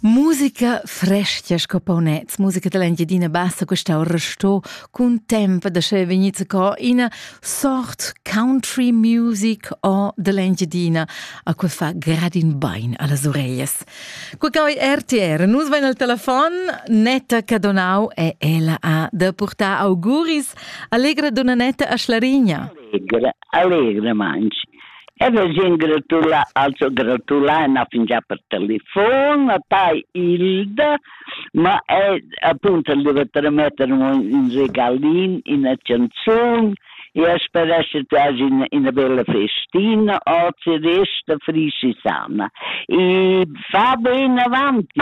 Musica fresca sco paunets, musica dall'Engiadina Bassa quest'au resto cun tempo da sche vegniz co ina sort country music o dall'Engiadina, a cui fa gradin bain alle orecchie. Qui cau RTR, nus vain al telefon, Netta Cadonau e ella ha da portar auguris. Allegra donna Netta a Schlarigna. Allegre, allegre mangi. E vegin gratula, also gratula na fingià per telefon, a tai Hilda, ma è appunto li va trametter un regalin, una canzun, e speresce tu hagi una, una bella festina o ci resta frisi sana. E fa ben avanti,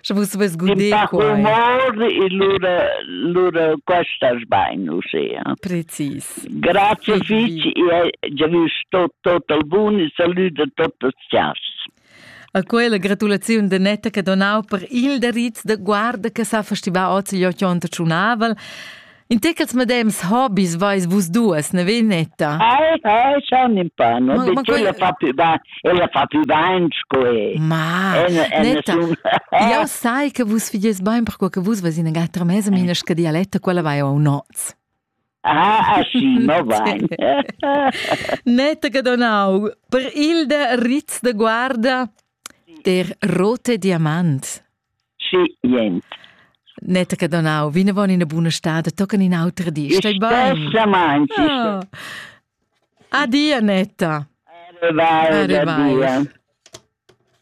Sche vus vus guder quai. Mor e lura lura questas bain uschea. Precis. Grazie fich e già vis tot tot al bun e saluda totas chas. A quella gratulaziun de Netta che donau per il deriz de guarda che sa festival oz gli ochonta tsunavel In tichels medems hobis vais vus duas, ne Veneta? Ai, ai, schon in pa, no? Ma- ma quella fa più da, ella fa più dain sco è. Ma, En- en Netta, nessun- jau sai che vus figies bain perquai che vus vais ina gatta mesa minas che dialetta, quella vai au noz. Ah, aschi, no vai. Netta Gadonau, per il de Ritz de Guarda der rote diamant. Schient. Netta che donau vinavon ina buna stada tocan in autra di. Stai bein? Stamant. Ah. Adia Netta. Arrivai. Arrivai.